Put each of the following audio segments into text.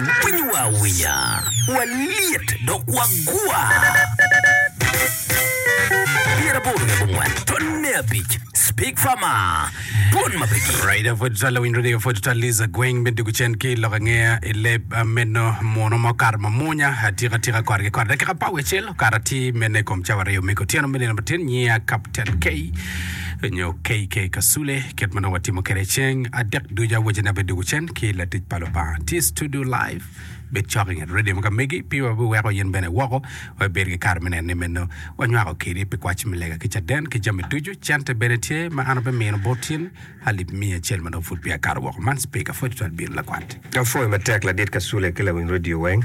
Winyo wa awinya, walyet dok wagwa. Pyeraboro ki abongwen, twon me abic, Speak Farmer, twon ma pe gik. Raida pwod twal lawiny radio pwod twal Liza gweng me dugu cen ki lok angeya i leb ah, meno muno ma okato mamunya atika atika kore ki kore dakika apar wiye acel okato atir mene i kom cawa aryo me kutyeno me nino matin nyiya Captain K nyo KK Kasule kit ma nongo watimo kwede ceng adek ducu awacine abedo dugu cen ki latic pa Lubanga. Tye i tudio live, bed cok i nget redio mo ka megi, pii wa biweko in bene iwoko, wa ibed ki kare me neno ni meno wanywako kedi pi kwaci me lega ki caden ki jami ducu. Cente bene tye ma an abimino bot in, alip miya acel ma dong pud peya akato woko. Man Speaker, pwod twal bino lakwat. Apwoyo matek ladit Kasule ki lawiny redio weng.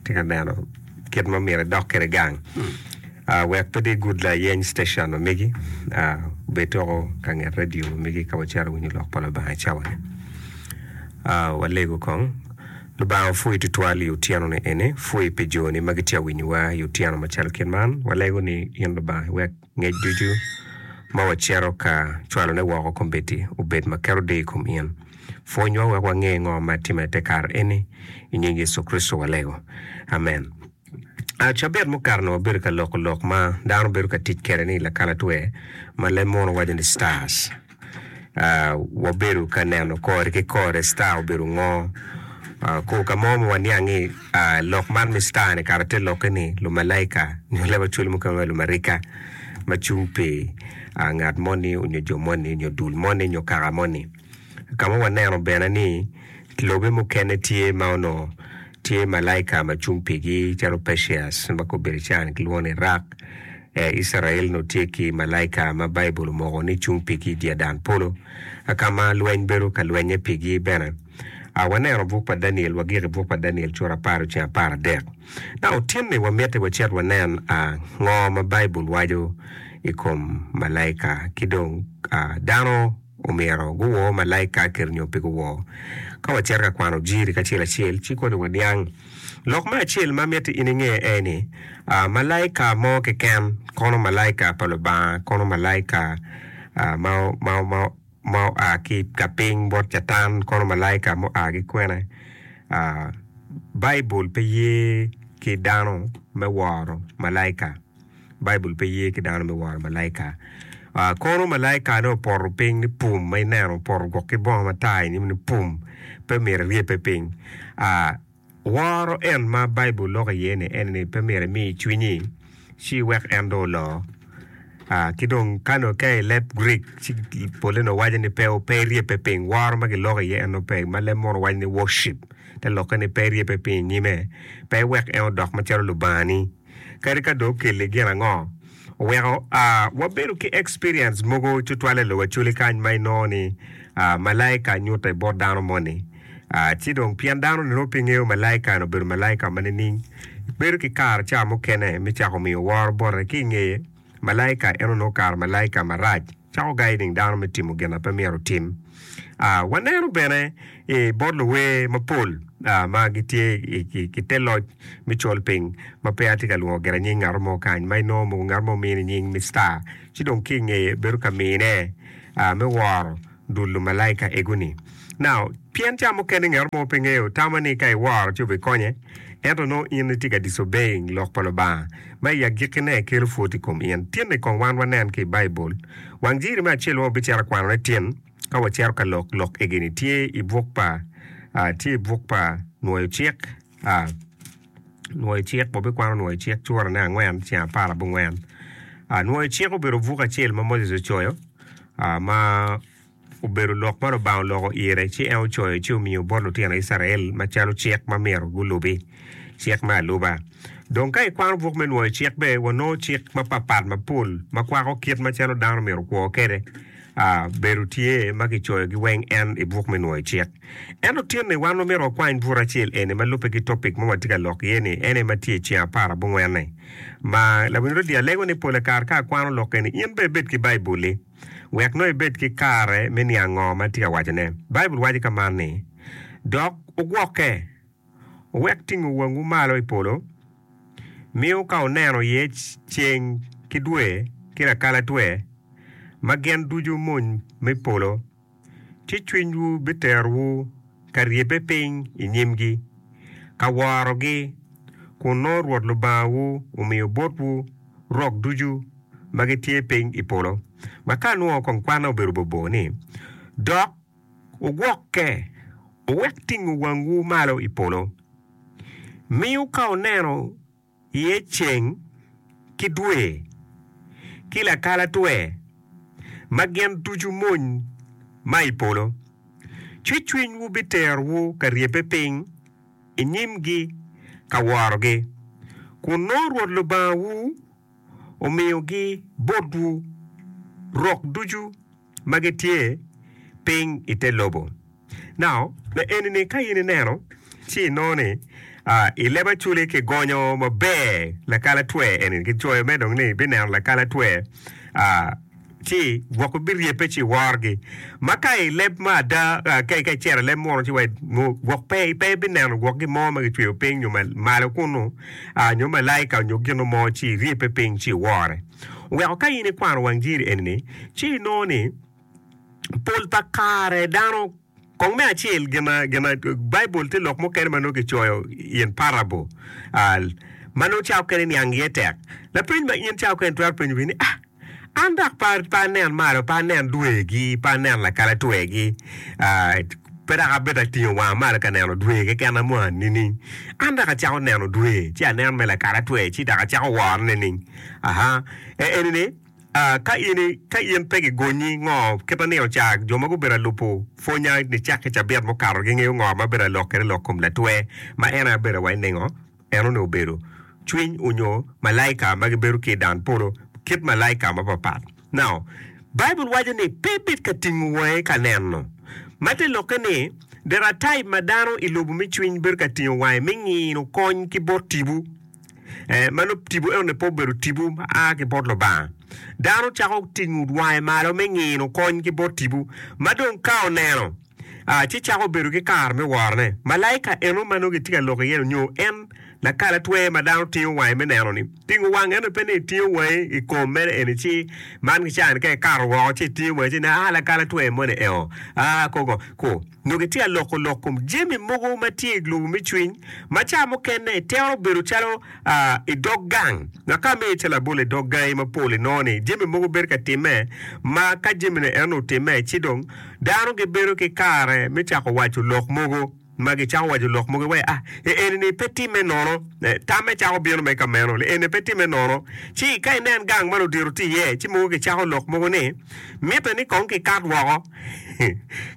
Atye ka neno kit ma myero idok kwede gang wek pe dong igud layeny citacion ma megi. Bed dong ka nget redio ma megi ka wacito winyo lok pa Lubanga i cawani. Walego kong. Lubanga opwoyi tutwal i otyeno-ni eni. Pwoyi pi joni ma gitye ka winyowa i otyeno macalo kit man. Walego ni in Lubanga iwek Ngec ducu ma wacito ka cwalone woko kombeddi obed ma keto deyo i kom in. Pwonywa wek wange ngo ma timme te kare eni. I nying Yecu Kricito walego. Amen. A Cabit mukato-ni wabedo ka loko lok ma dano bedo ka tic kwede ni lakalatwe ma leb munu waco ni stars. wabedo ka neno kore ki kore star obedo ngo ko ka mo ma waniang ni lok man me star ni kara te lokke ni lumalaika nyo lawaco mukene ma lumarika ma cung pi ngat moni nyo jo moni nyo dul moni nyo kaka moni ka ma waneno bene ni lobe mukene tye ma onongo Tye malaika ma cung pigi calo Perseus ma gubedo i can gilwongo ni Rak. Icrael onongo tye ki malaika ma Baibul omoko ni cung pigi i dyadan polo, ka ma lweny bedo ka lwennye pigi bene. A Waneno buk pa Daniel, wagik i buk pa Daniel cura apar oceng apar adek. Ka otinni wa mitte wacit wanen a ngo ma Baibul waco i kom malaika ki dong a dano. omyero guwor malaika kit nyo pe guwor. Ka wacito ka kwano jiri kacel acel, ci koni waniang lok me acel ma miti in inge aye ni, Malaika mo keken, kono malaika pa Lubanga, kono malaika ma oa ki ka piny bot Catan, kono malaika mua ki kwene? Baibul pe ye ki dano me woro malaika. Baibul pe ye ki dano me woro malaika. Kono malaika ne opoto piny ni pum ma ineno opoto gwok ki bongo matar inyim ni pum pe myero iryepe piny. Woro en ma Baibul loko iye ni en ni pe myero imi cwinyi ci iwek en dong olo. Ki dong ka nongo ka i leb Grik ci pole nongo waco ni pe iryepe piny. Woro ma kiloko iye en nongo pe ma leb mono waco ni worship te lokke ni pe iryepe piny inyime pe iwek en odok macalo lubangani. kadi ka dong okelli gin ango. Oweko wabedo ki experience mogo tutwale i lobo Acholi kany ma inongo ni malaika nyutte bot dano moni. Ci dong pien dano ni nongo pe ngeyo malaika eno obedo malaika ma nining, bedo ki kare ca mukene me cako miyo woro bote ki ingeye. Malaika en onongo kare malaika marac cako gayo nining dano me timo gin na pe myero otim. Waneno bene i bot luwer mapol ma gitye i te loc me colpiny ma pe atye ka lwongo gire nying ngat mo kany ma inongo mogo ngat mo omine nying Mister ci dong ki i ngeye bedo ka mine me woro. Dul lumalaika egu ni, Now, pien ca mukene ngat mo pe ngeyo, tama ni ka iworo ci wubikonye, ento nongo in itye ka disobeying lok pa Lubanga, ma i agikkine kelo pwod i kom in. Tinni kong wan wanen ki i Baibul, wang jiri me acel ma wabicito ka kwanone tin ka wacito ka lok lok egi-ni tye i buk pa, tye i buk pa Nwoyo Cik. Nwoyo Cik, Wabikwano Nwoyo Cik curane angwen ceng apar abongwen. Nwoyo Cik obedo buk acel ma Moses ocoyo ma obedo lok ma Lubanga oloko ire ci en ocoyo ci omiyo bot lutino Icrael macalo cik ma myero gulubi, cik me aluba. Dong ka ikwano buk me Nwoyo Cik bene, wanongo cik mapatpat mapol ma kwako kit macalo dano myero okwo kwede. Bedo tye ma kicoyogi weng en i buk me Nwoyo Cik. Ento tinni wan wamito wakwany bur acel eni ma lubbe ki topic ma watye ka lok iye-ni, en aye ma tye i ceng apar abongwen-ni. Ma, Labongo Rodi, alego ni pole kare ka akwano lok eni, in bene ibed ki Baibul-li, wek nongo ibed ki kare me niang ngo ma atye ka wacone. Baibul waco ka man ni, Dok wugwokke, wuwek tingo wangwu malo i polo, miyo ka wuneno iye ceng ki dwe ki lakalatwe, ma gin ducu mony me polo, ci cwinywu biterowu ka ryebbe piny i nyimgi, ka worogi, kun nongo Rwot Lubangawu omiyo botwu rok ducu ma gitye piny i polo. Ma ka nongo kong kwanna obedo bobor ni, Dok wugwokke, wuwek tingo wangwu malo i polo, miu ka wuneno, iye ceng ki dwe ki lakalatwe ma gin ducu mony ma i polo, ci cwinywu biterowu ka ryebbe piny i nyimgi ka worogi, kun nongo Rwot Lubangawu omiyogi botwu rok ducu. ma gitye piny i te lobo. Now, me eni ni ka in ineno ci inongo ni i leb aculi ki gonyo maber lakalatwe eni ki coyo me dong ni bineno lakalatwe ci gwok biryebbe ci worogi ma ka i leb ma ada ka i cero i leb muno ci wa gwok pe pe ibineno gwok gin mo ma kicweyo piny nyo malo kunu nyo malaika nyo gino mo ci iryebbe piny ci iwore. Weko ka in ikwano wang jiri eni-ni, ci inongo ni pol pa kare dano kong me acel gin ma gin ma Baibul tye lok mukene ma nongo kicoyo in parable ma nongo cawa mukene niang iye tek. Lapeny ma in cawa mukene itwero penyo gini ni, Ah, an dok pe pe anen malo, pe anen dwegi, pe anen lakalatwegi, pe dok abedo atingo wanga malo ka neno dwe keken amo nining? An dok acako neno dwe, ci anen me lakalatwe, ci dok acako worone nining? Aha, e eni ni, ah, ka in, ka in pe gigonyi, ngo, kita ni ocak, jo ma gubedo alupu pwonya nicak ki cabit mukato gingeyo ngo ma bedo alok kede lok kom latwe ma en aye bedo wa i ningo, en onongo obedo, cwiny onyo malaika ma gibedo ki i dan polo, kit malaika mapat pat. Now, Baibul waco ni pe bit ka tingo wangi ka neno. Ma te lokke ni, there are type ma dano i lobo me cwiny bedo ka tingo wangi me ngino kony ki bot tibu. Eh, ma lub tipo eno-ni pe obedo tipo ma a ki bot Lubanga. Dano cako tingo wange malo me ngino kony ki bot tipo, ma dong ka oneno, ah, ci cako bedo ki kare me worone. Malaika eno ma nongo kitye ka lok iye-nu, nyo en lakalatwer ma dano tingo wange me neno-ni, tingo wange eno-ni pe ni itingo wangi i kom mere eni ci man ki ca-ni ka ikato woko ci itingo wangi ci nen, ah, lakalatwer moni eo, ah, koko, ko. Nongo itye ka loko lok kom jami mogo ma tye i lobo me cwiny ma cawa mukene itero bedo calo i dog gang. Ngat ka miyo ical labol i dog gangi mapol inongo ni jami mogo bedo ka timme ma ka jamine enoni otimme ci dong dano gibedo ki kare me cako waco lok mogo ma gicako waco lok mogo iwaci ah ee enini pe timme nono. Tamme cako bino mere ka meno ni enini pe timme nono. Ci ka inen gang ma ludito tye iye ci mogo gicako lok mogo ni mitte ni kong kikat woko.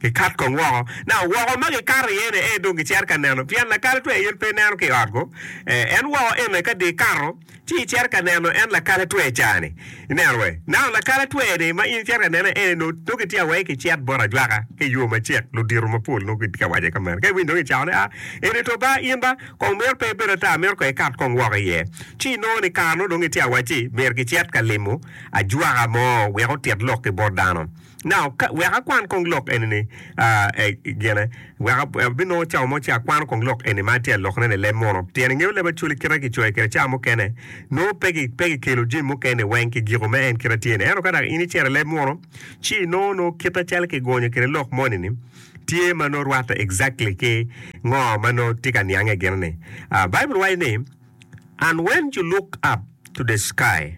Gikat kong woko. Now, woko ma gikato iye ni ee dong gicito ka neno, pien lakalli twer aye pe neno ki i ot-gu. Eh, en woko ene ka dye ikato, ci icito ka neno en lakalli twer ca-ni. Ineno wee? Now, lakalli twer-ni ma in icito ka nene ene nongo, nongo kitye awacci ni kicit bot ajwaka ki i yo macek, ludito mapol nongo gitye ka wace ka meno. Ka iwinyo dong icako ni, Ah, eni to ba, in ba, kong mito pe ibed ata, mito kong ikat kong woko iye. Ci inongo ni kare-nu dong itye awacci myero kicit ka limo ajwaka mo wek otit lok ki bot dano. Now, ka, wek akwan kong lok eni ni, ah, eh, gine, wek ab- abinongo cawa mo ci akwano kong lok eni ma atye ka lokone-ni i leb muno. Pien ingeyo leb Acholi kite ma kicoyo kwede cawa mukene, nongo pe ki, pe kikelo jami mukene-ni weng ki giko me en kite ma tye-ni. Ento ka dok in icito i leb muno, ci inongo nongo kite calo kigonyo kwede lok moni-ni tye ma nongo rwatte exactly ki ngo ma nongo tye ka niange gire-ni. Ah, Baibul waco ni, And when you looked up to the sky,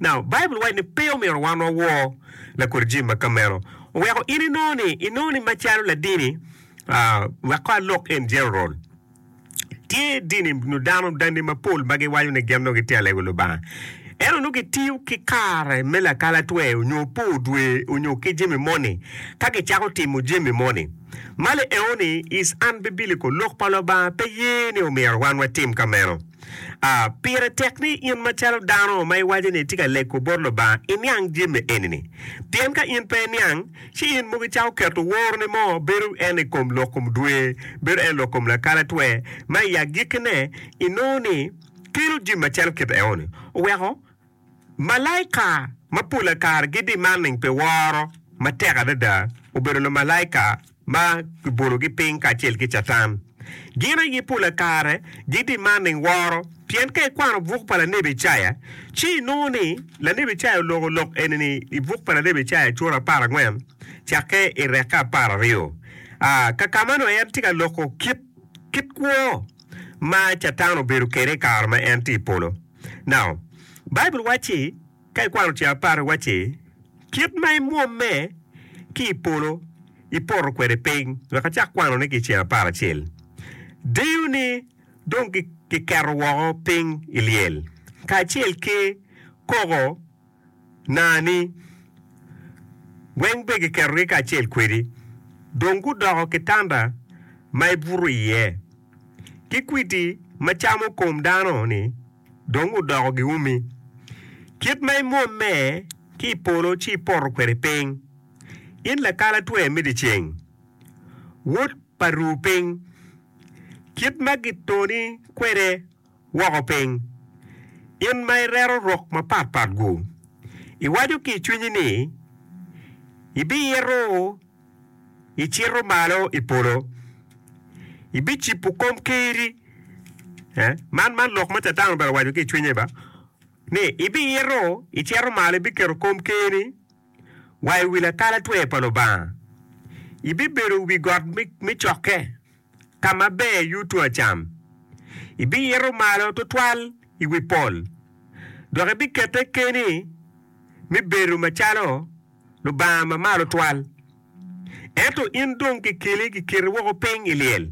Now, Baibul waco ni pe omyero wan wawor lakodi jami ma ka meno. Oweko in inongo ni, inongo ni macalo ladini, ah, wek kong alok in general, tye dini nyo dano, danni mapol ma giwaco ni gin nongo gitye ka lego Lubanga. Ento nongo gitiyo ki kare me lakalatwer nyo pur dwe nyo ki jami moni ka gicako timo jami moni. Malo eoni is unbiblical. Lok pa Lubanga pe ye ni omyero wan watim ka meno. A Pire tek ni in macalo dano ma iwaco ni itye ka lego bot Lubanga iniang jami eni-ni. Pien ka in pe iniang, ci in mogo icako keto woroni mo, bedo en i kom lok kom dwe, bedo en lok kom lakalatwe, ma i agikkine inongo ni kelo jami macalo kit eno-ni oweko. Malaika ma pole kare gidi manning pi woro matek adada obedo lumalaika ma kibologi piny kacel ki Catan. Gin aye pole kare gidi manning woro, pien ka ikwano buk pa lanebi Icaya, ci inongo ni lanebi Icaya oloko lok eni-ni i buk pa lanebi Icaya cura apar angwen cakke i rekke apar aryo. A Ka ka meno, en tye ka loko kit kit kwo ma Catan obedo kwede i kare ma en tye i polo. Now, Baibul wacci, ka ikwano tye apar, wacci, Kit ma imwomme ki i polo, ipoto kwede piny, wek acak kwanone ki i ceng apar acel. Diyoni dong kiketo woko piny i lyel, kacel ki koko. naa-ni weng be giketogi kacel kwedi, dong gudoko kitanda ma ibuto iye, ki kwidi ma camo kom dano-ni dong odoko giumi. Kit ma imwomme ki i polo ci ipoto kwede piny, in lakalatwe me dyeceng, wod pa ru piny, kit ma gitoni kwede woko piny. In ma ireto rok mapatpat-gu, iwaco ki i cwinyi ni, 'Ibiito icito malo i polo, ibicibo komkerri. Man lok ma Catan obalo owaco ki i cwinye ni, 'Ibiito icito malo, ibiketo komkerri wa i wi lakalatwe pa Lubanga, ibibedo i wi got me cokke. ka ma ber yuto a cam, ibiito malo tutwal i wi pol, dok ibikette keni me bedo macalo Lubanga Mamalo Twal. Ento in dong kikeli kiketi woko piny i lyel,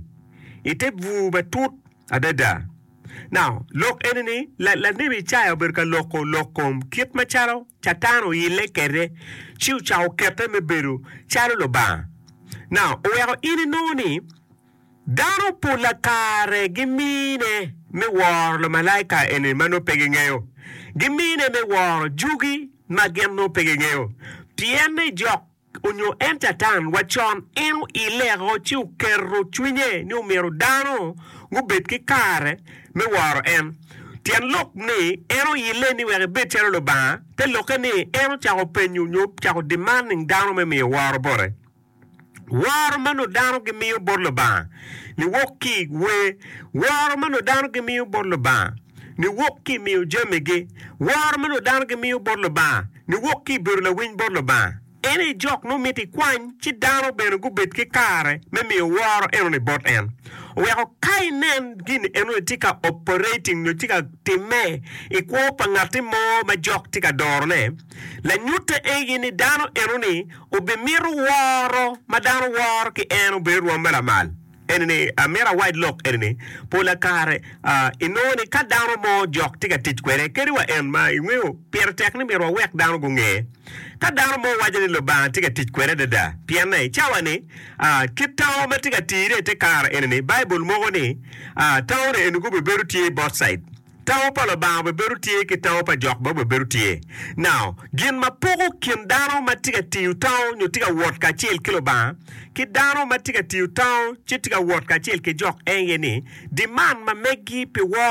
i te bur matut adada, Now, lok eni ni, la, lanebi Icaya obedo ka loko lok kom kit macalo Catan oyille kede, ci ocako kete me bedo calo lubanga. Now, oweko in inongo ni, dano pola kare gimine me woro lumalaika eni ma nongo pe gingeyo, gimine me woro jugi ma gin nongo pe gingeyo, pienne jok onyo en Catan wa con, en oileo ci oketo cwinye ni omyero dano gubed ki kare me woro en. Tyen lok ni en oile ni wek ebed calo Lubanga te lokke ni en ocako penyo nyo cako demanding dano me miyo woro bote. Woro ma nongo dano gimiyo bot Lubanga ni wok ki i wer woro ma nongo dano gimiyo bot Lubanga. niwok ki i miyo jamigi woro ma nongo dano gimiyo bot Lubanga, niwok ki i bedo lawiny bot Lubanga. En aye jok nongo mito ikwany ci dano bene gubed ki kare me miyo woro enoni bot en. Oweko ka inen gin enoni tye ka operating nyo tye ka timme i kwo pa ngatti mo ma jok tye ka dorone, lanyutte aye ni dano enoni obimito woro ma dano woro ki en obino rwomme lamal. eni ni, amito awac lok eni ni, pola kare inongo ni ka dano mo jok tye ka tic kwede, kadi wa en ma ingeyo, pire tek ni myero wawek dano gunge. Ka dano mo waco ni Lubanga tye ka tic kwede adada, pienne i cawa-ni, kit tango ma tye ka tire i te kare eni ni, Baibul moko ni, tangone eni gubibedo tye bot said. Tawo pa Lubanga obibedo tye ki tawo pa jok ma obibedo tye. Now, gin ma poko kin dano ma tye ka tiyo tawo nyo tye ka wot kacel ki Lubanga ki dano ma tye ka tiyo tawo ci tye ka wot kacel ki jok eye ni diman ma megi pi woo